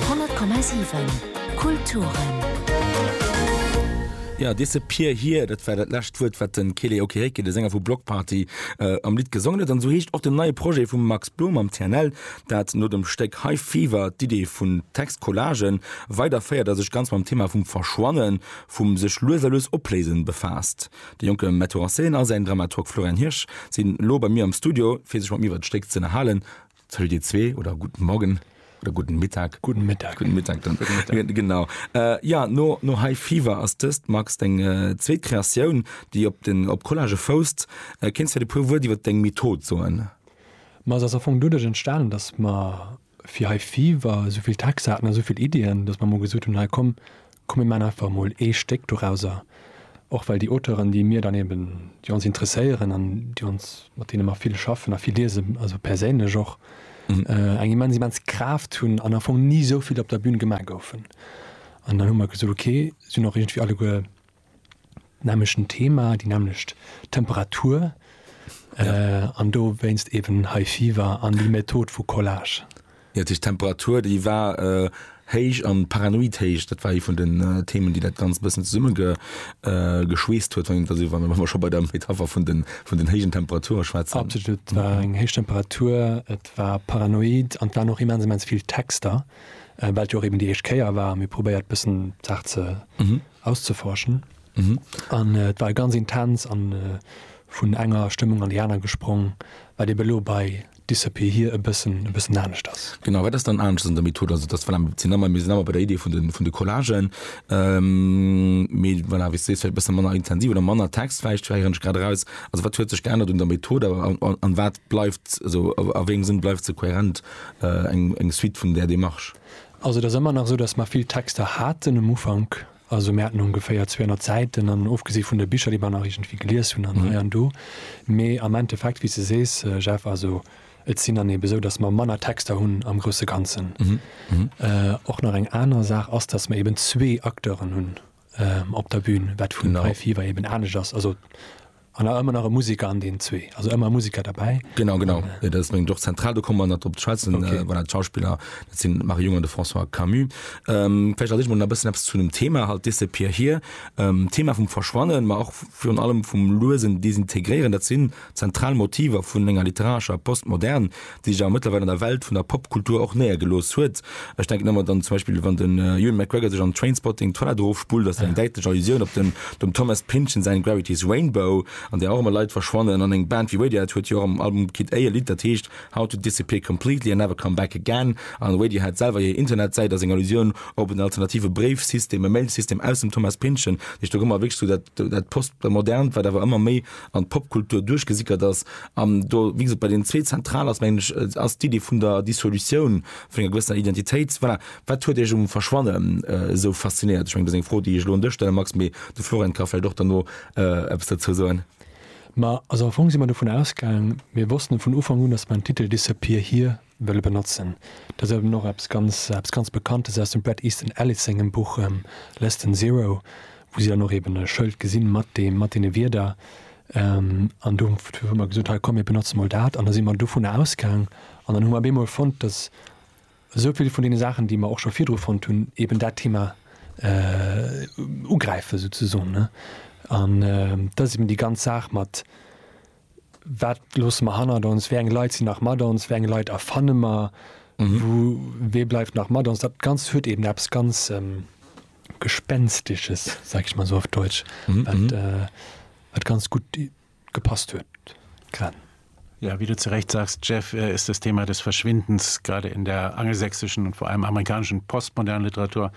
100,7 Kulturen. Jo, Disappear Here, dat war dat lescht Wuert, wat de Kele Okereke, de Sänger vu Bloc Party, am Lidd gesongen huet. An esou heescht och den neie Projet vum Max Blom mam TNL, dat no dem Stéck High Fever d'Idee vun Textcollagen weiderféiert a sech ganz mam Thema vum Verschwannen, vum sech lues a lues opléisen befaasst. De jonke Metteur en scène a säin Dramaturg Florian Hirsch sinn elo bei mir am Studio, fir sech mat mir iwwert d'Stéck z'ënnerhalen. Salut dir zwee oder guten Morgen oder guten Mittag. Guten Mittag. Guten Mittag, dann. Guten Mittag. Gen- Genau. Äh, ja, no, no High Fever ass dëst, Max, deng äh, zweet Kreatioun, déi op den op Collage fousst. Äh, Kéinst fir de puer Wuert iwwer deng Method soen? Ma se ass am Fong doduerch entstanen, datt mer fir High Fever esouvill Texter haten a souvill Iddien, datt mer emol gesot hunn, hei komm, Komm mir maan einfach mol ee Stéck dorauser, och well déi Auteuren déi mir dann eben, déi ons interesséieren an déi ons, mat deene mer vill schaffen a vill liesen, also perséinlech och, eng immens immens Kraaft hunn an am Fong ni esou vill op der Bühn gemaach goufen. An dann hu mer gesot, ok, sinn och iergendwéi alleguer, nämlechten Thema, déi nämlecht Temperatur ja. äh, an do wéinst eben High Fever an die Method vu Collage. Ja, die Temperatur, die war äh, héich an paranoid héich, dat war e vun den äh, Themen, die dat ganz bëssen zesumme ge, äh, geschweest huet, wann man schon bei der Metapher vun den, vun den héigen Temperature schwätzen. Absolut, et war mhm. eng héich Temperatur, et war paranoid an war noch immens immens viel Texter, äh, weil jo eben die éischt Kéier war, mir probéiert bëssen Saach ze mhm. auszeforschen an et war ganz intens an vun enger Stëmmung an déi aner gesprong, wat ebe lo bei Disappear Here e bëssen e bëssen anescht ass. Genau, wat ass dann anescht an der Method? Also et ass voilà, mir sinn ëmmer mir sinn ëmmer bei der Idee vun de vun de Collagen, mee voilà wéi s de sees, vläicht e bësse manner intensiv oder manner Text vläicht, héieren ech grad eraus. Also wat huet sech geännert un der Method a an wat bleift, also a wéi engem Sënn bleift se kohärent eng eng Suite vun där Démarche? Also et ass ëmmer nach esou, datt mer vill Texter haten um Ufank. Also mir haten ongeféier 200 Säiten an ofgesi vun de Bicher, déi mer nach iergendwéi gelies hunn an hei an do. Mee am Endeffekt, wéi s de sees, Jeff, also et sinn dann eebe esou, datt mer manner Texter hunn am grousse Ganzen. Och nach eng aner Saach ass, datt mer eeben zwee Acteuren hunn. op der Bühn, wat vun High Fever eben anescht ass. Also an awer ëmmer nach e Musiker an deenen zwee, also ëmmer e Musiker derbäi. Genau, genau. Dat ass meng Job zentral, do komme mer nach drop ze schwätzen. Okay. Voilà, d'Schauspiller, dat sinn d'Marie Jung an de François Camus. Vläicht erzéilt mer e bëssen eppes zu dem Thema halt, Disappear Here. D'Thema vum Verschwannen, ma och virun allem vum luesen Desintegréieren, dat sinn zentral Motiver vun enger literarescher Postmodern, déi jo mëttlerweil an der Welt vun der Popkultur och néiergelooss huet. Ech denken ëmmer dann zum Beispill, wann den Ewan McGregor sech an Trainspotting d'Toilette erofspullt, ass dat eng däitlech Allusioun op den, dem Thomas Pynchon säin Gravity's Rainbow, an där och ëmmer Leit verschwannen. An eng Band wéi Radiohead huet jo och am Album Kid A e Lidd, dat heescht How to Disappear Completely and Never Come Back Again. An Radiohead selwer hir Internetsäit ass eng Allusioun op en alternative Bréifsystem, e Mailsystem aus dem Thomas Pynchon. Heescht do gëtt mer wierklech sou dat, dat Postmodernt, wat awer ëmmer méi an d'Popkultur duerchgesickert ass. An do, wéi gesot, bei deenen zwee zentral ass, mengen ech, ass d'Iddi vun der Dissolutioun vun enger gewëssener Identitéit. Voilà. Wat huet Iech um Verschwanne esou faszinéiert? Ech mengen, dat ass eng Fro, déi ech elo un dech stelle, Max, mee de Florent ka vläicht och derno eppes dozou soen. Ma also am Fong si mer dovun ausgaang, mir wossten et vun Ufank un, datt mer den Titel Disappear Here wëlle benotzen. Dat ass eben och eppes ganz eppes ganz Bekanntes aus dem Bret Easton Ellis sengem Buch Less Than Zero, wou si dann och eben e Schëld gesinn mat deem mat deene Wierder. An do hu mer gesot, hei komm mir benotze mol dat. An da si mer dovunner ausgaang an dann hu mer op eemol fonnt, datt esou vill vun deene Saachen, déi mer och scho virdru fonnt hunn, eben dat Thema ugräife souzesoen. An dat ass eben déi ganz Saach mat Wat loosse mer hannert ons? Wéi eng Leit sinn nach mat ons? Wéi eng Leit erfanne mer? Wou, wee bleift nach mat ons? Dat Ganzt huet eben eppes ganz Gespenstesches, sag ich mal so auf Deutsch, wat, wat ganz gutt gepasst huet grad. Ja, wie du zu Recht sagst, Jeff, ist das Thema des Verschwindens gerade in der angelsächsischen und vor allem amerikanischen postmodernen Literatur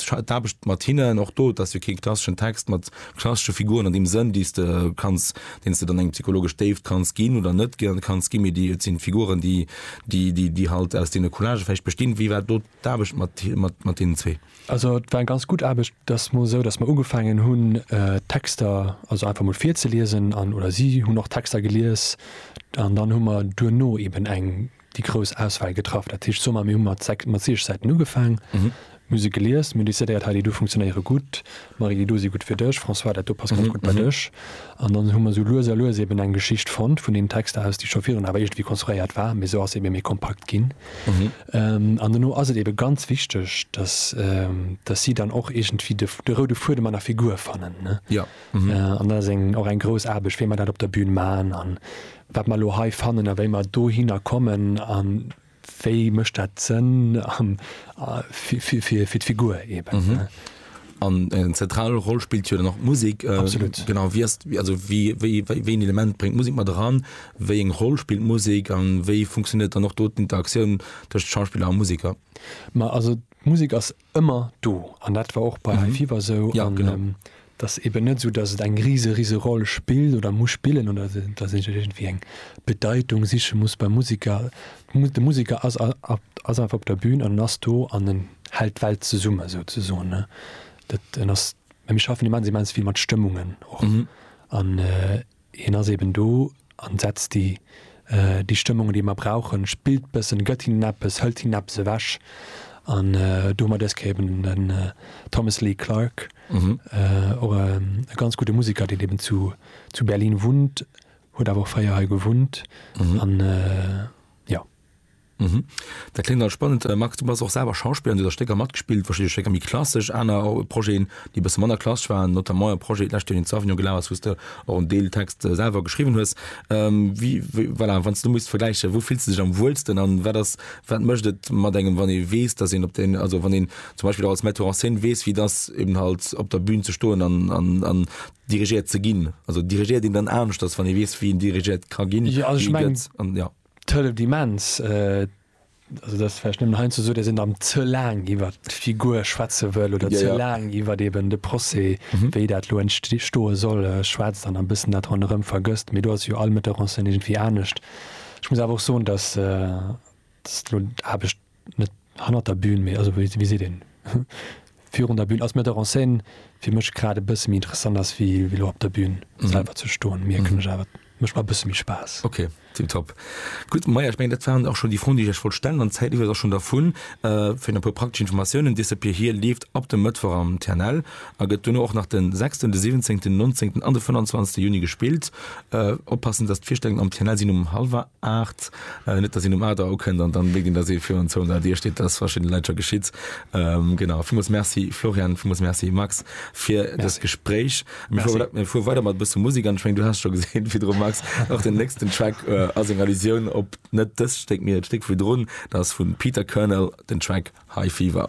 d'Aarbecht mat hinnen, och do, et ass jo kee klasseschen Text mat klassesche Figuren an deem Sënn, déi s de kanns, deen s de dann eng psychologesch Déift kanns ginn oder net kanns ginn, mee déi, et sinn d'Figuren, déi, déi, déi, déi halt aus deene Collagë vläicht bestinn. Wéi war do d'Aarbecht mat, mat, mat deenen zwee? Also et war eng ganz gutt Aarbecht. Et ass mol esou, datt mer ugefaangen hunn, d'Texter also einfach mol virzeliesen an, oder si hunn och d'Texter gelies an dann hu mer duerno eeben eng déi grouss Auswahl getraff. Dat heescht sommar mir hu mat sechs mat siech Säiten ugefaang, mir hu se gelies, mir hu décidéiert, hei déi do funktionéiere gutt, Marie, déi do si gutt fir dech, François, dat do passt ganz gutt bei dech. An dann hu mer esou lues a lues eben eng Geschicht fonnt vun deenen Texter aus, déi scho virun awer iergendwéi konstruéiert war, mee esou ass se ebe méi kompakt ginn. An duerno ass et ebe ganz wichteg, dass dass si dann och iergendwéi de de roude Fuedem an der Figur fannen, ne? An dat ass eng och eng grouss Aarbecht, wéi mer dat op der Bühn man an wat mer elo hei fannen a wéi mer dohinner kommen a wéi mécht dat Sënn fir d'Figur eeben. An eng zentral Roll spillt jo dann och d'Musek. Absolut. Genau, wéi ass, also wéi, wéi, wéi, wéi een Element bréngt d'Musek mat eran, wéi eng Roll spillt d'Musek a wéi funktionéiert dann och do d'Interaktioun tëscht Schauspiller a Museker? Ma also d'Musek ass ëmmer do an dat war och bei High Fever esou an dat ass eben net esou, datt et eng rise rise Roll spillt oder muss spillen oder datt een iergendwéi eng Bedeitung siche muss beim Musiker. De Musiker ass ass einfach op der Bün an en ass do an en hält d'Welt zesumme souzesoen ne. Dat en ass, mä mir schaffen immens immens vill mat Stëmmungen och an. Hien ass eben do an setzt déi déi Stëmmung déi mer brauchen, spillt bëssen, gëtt hinnen eppes, hëlt hinnen eppes ewech an do hu mer dës Kéier eben den Thomas Lee Clarke, och e ganz gudde Musiker deen eben zu zu Berlin wunnt, huet awer och fréier hei gewunnt an jo. Mhm. Dat kléngt all spannend. Äh, Max, du bass och selwer Schauspiller, du hues a Stécker matgespillt, verschidde Stécker méi klassesch, aner äh, Projeten, déi bësse manner klassesch waren, notamment e Projet d'lescht Joer, deen zu Avignon gelaf ass, wous de och en Deel Text äh, selwer geschriwwen hues. Ähm, wie, wie, voilà, wann s du musst vergläichen, wou fills du dech am wuelsten an wat ass, wat mécht et mat engem, wann ee weess, dass een op den, also wann een zum Beispiel och als Metteur en scène weess, wéi et ass, eben halt op der Bühn ze stoen an, an, an dirigéiert ze ginn? Also dirigéiert een dann aneschters, wann ee weess, wéi een dirigéiert ka ginn, Ja, also ech wéi mengen, gëtt an, ja. D'Hëllef di immens, also dat vläicht nëmmen heiansdo esou, dass een dann ze laang iwwert d'Figur schwätze wëll oder ze laang iwwert eeben de Procès, wéi dat elo entstoe soll, schwätzt an e bëssen dat ronderëm vergësst. Mee do ass jo all Metteur en scène iergendwéi anescht. Ech muss awer och soen, dass elo d'Aarbecht. net hannert der Bühn, mee also wéi seet een, virun der Bühn, als Metteur en scène fir mech grad e bësse méi interessant ass wéi elo op der Bühn selwer ze stoen, mierken ech awer. Mécht mer e bësse méi Spaass. Ok, tiptop. Gutt, Maja, ech mengen, dat waren och schonn déi Froen, déi ech iech wollt stellen, an d'Zäit lieft eis och schonn dervun. Fir nach e puer praktesch Informatiounen, This Up Here Here leeft ab dem Mëttwoch am TNL a gëtt duerno och nach de sechsten, de siwwenzéngten, nonzéngten an de fënnanzwanzegste Juni gespillt. Oppassen, dass d'Virstellungen am TNL sinn um hallwer. 8, net datt een um Ader ukënnt an dann wéi ginn, datt ee virun zwouhonnert Dir steet, dat ass verschiddene Leit scho geschitt. Genau, villmools Merci Florian, villmools Merci Max fir dëst Gespréich. Mir fuere weider mat e bësse Musek an ech mengen, du has scho gesinn virdru Max, och den nächsten Track ass eng Allusioun op net dëst Stéck, mee dat Stéck virdrun, dat ass vum Peter Kernel den Track High Fever.